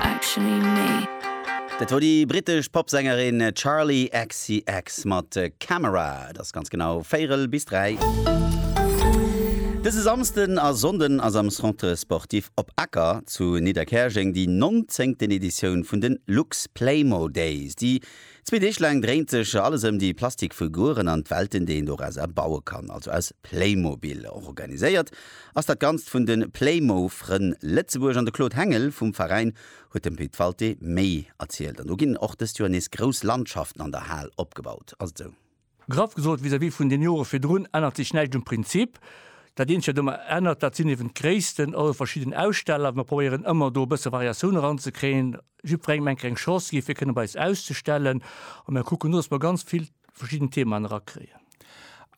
actually me. Dat wor déi brittesch Popsängerin Charli XCX mat Camera. Et ass ganz genau véirel bis dräi. Dëse Samsden a Sonnden ass am Centre Sportif Op Acker zu Nidderkäerjeng déi 19. Editioun vun den Luxplaymo Days. Déi Zwee Deeg laang dréint sech alles ëm déi Plastikfiguren an d'Welten, déi een dorauser baue kann, also aus Playmobil. Organiséiert ass dat Ganzt vun de Playmo-Frënn Lëtzebuerg an de Claude Hengel vum Veräin huet dem Pit Walté méi erzielt. An do ginn och dëst Joer nees grouss Landschaften an der Hal opgebaut, ass et esou? Graff gesot, vis-à-vis vun den Jore virdrun ännert sech näischt um Prinzip. Dat eenzegt, wat ëmmer ännert, dat sinn eeben d'Gréissten, also verschidden Aussteller. Mer probéieren ëmmer do e bësse Variatioun eranzekréien, jiddwerengem eng kleng Chance ze ginn, fir kënne bei eis auszestellen. A mer kucken elo, datt mer ganz vill verschidden Themaen erakréien.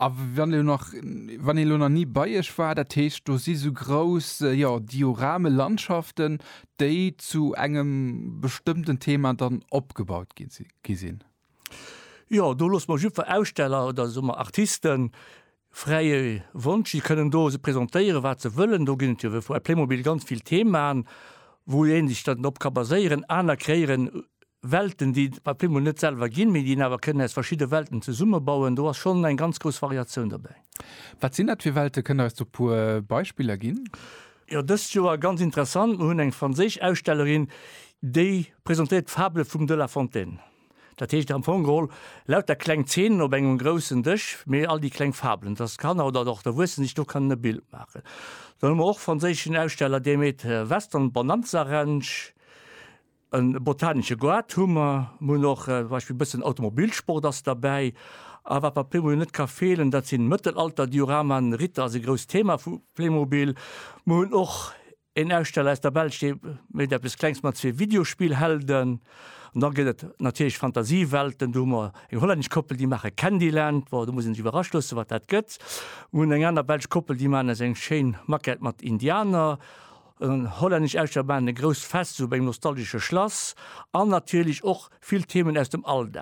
A wann elo nach, wann een elo nach ni bei iech war, dat heescht, do si sou grouss, jo, Diorame, Landschaften, déi zu engem bestëmmten Thema dann opgebaut gi sinn? Jo, do loosse mer jidfer Aussteller oder soe mer Artiste fräie Wonsch. Si kënnen do se presentéieren, wat se wëllen. Do ginn et jo wéi vu Playmobil ganz vill Themaen, wou ee sech dann drop ka baséieren. Aner kréieren Welten, déi et bei Playmobil net selwer ginn, mee déi een awer kënnen aus verschidde Welten zesummebauen. Do ass schonn eng ganz grouss Variatioun dobäi. Wat sinn dat fir Welte? Kënnt Der eis do e puer Beispiller ginn? Jo, dëst Joer ganz interessant, Mir hunn eng franséisch Ausstellerin, déi presentéiert d'Fable vum de La Fontaine. Dat heescht am Fong geholl lauter kleng Zeenen op engem groussen Dësch, mee all déi kleng Fabelen, dass d'Kanner oder och d'Erwuessen sech do kënnen e Bild maachen. Dann hu mer och franséischen Aussteller, dee méet Western Bonanza Ranch. E botanesche Goart hu mer, mer hunn och zum Beispill e bëssen Automobilsport ass derbäi. A wat bei Playmobil net ka feelen, dat sinn Mëttelalter-Dioramaen. Ritter ass e grousst Thema vu Playmobil. Mer hunn och een Aussteller aus der Belsch, dee mécht eppes Klengs mat zwee Videospill-Helden. An da gëtt et natierlech Fantasiewelten, do hu mer eng hollännesch Koppel, déi maache Candyland, bon do muss een sech iwwerrascht loossen, wat dat gëtt. Mer hunn eng aner belsch Koppel, déi maachen eis eng schéin Maquette mat Indianer. En hollännesch Äischterbahn, e grousst Fest zu engem nostalgesche Schlass an natierlech och vill Themen aus dem Alldag.